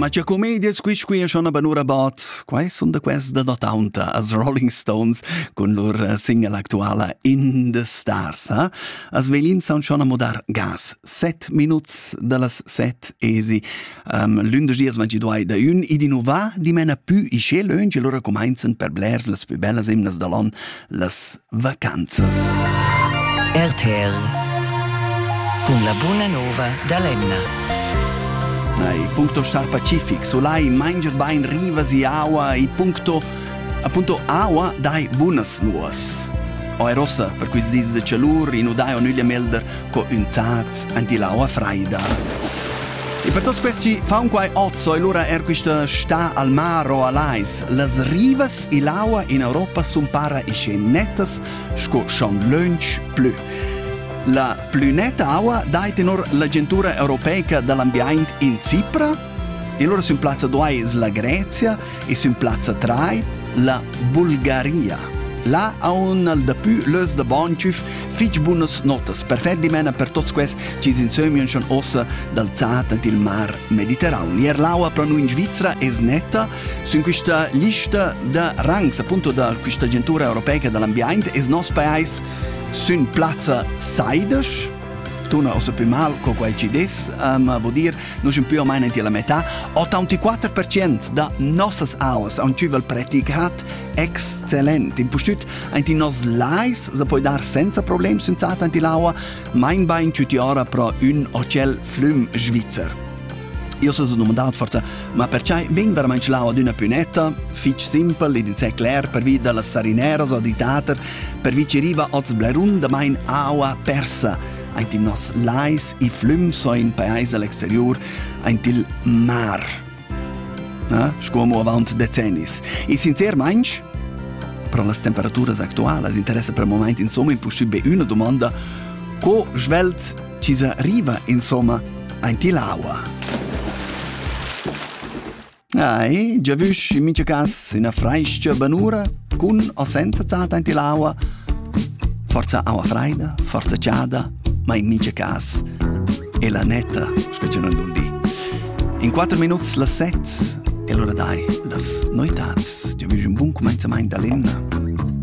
Magia Comedias, qui qui schon aber nur about quai sun da quest da Taunta as Rolling Stones cun lur eh, single actuala In the Stars. Eh? As velin saun schon a modar gas. Set minuts da las set esi. Um, Lündesch dias vanci duai da ün id innova dimena pü ische löngi lura comenzen per blers las pü bellas imnas da l'on las Vacanzas. RTR cun la buna nova da l'emna. Nei, puncto Star Pacific, solai, mainger bain rivas e aua e puncto appunto aua dai bunas nuas. Oi rossa per questi dis de cialur in udai on uglia melder co ün zaz anti l'aua freida. E per tuts questi faun quai ozzo e lura er quista sta al mar o alais. Las rivas e l'aua in Europa sun para ische nettas sco schon lönch plü. La plü netta aua dait in or l'agentura europeica dell'ambiaint in Cipra, e loro sun plazza duai la Grezia, e sün plazza 3 la Bulgaria. Là ha un al dapü lös da Bonchüf fich bunas notas per fer dimena per tots quels chi s'insömian schon ossa dal Zat ant il mar Mediterran. L'Erlaua pro noi in Svizzera es netta sün quista lista da rangs, appunto da quista agentura europeica dell'ambiente es nos paese sün plazza 16 tuna ossa pü mal co quai ci des, ma vo dir Noi sun più o meno tier la metà. 84% da nossas auas an tschüvel praticat exzellent. Impustüt aint in nos lais se poi dar senza problem senz'ata aint l'aua, mein bain tschüti ora pro ün hotel flüm svizzer. Io se sun domandat forza, ma perciai vegn verament l'aua d'üna pünetta? Fich simpel, id insè cler pervi da las sarineras o di tater, pervi ci riva oz blerun da main aua persa. aint in nos lais e flüms o in pais al exterior aint il mar. Na? Sco amo avant decennis. E sincermaing, per las temperaturas actualas interessa per moment insomma impossibile una domanda co svelt ci arriva insomma aint l'aua? Ei, già vusch in mincha cas üna frais-cha banura cun o senza tat aint ill'aua. Forza aua fraida, forza chada, ma in mincha cas è la netta, sco che non dul di. In quattro minuts las set e l'ora dai las noitats. Già vusch un bun comenzament da l'inna.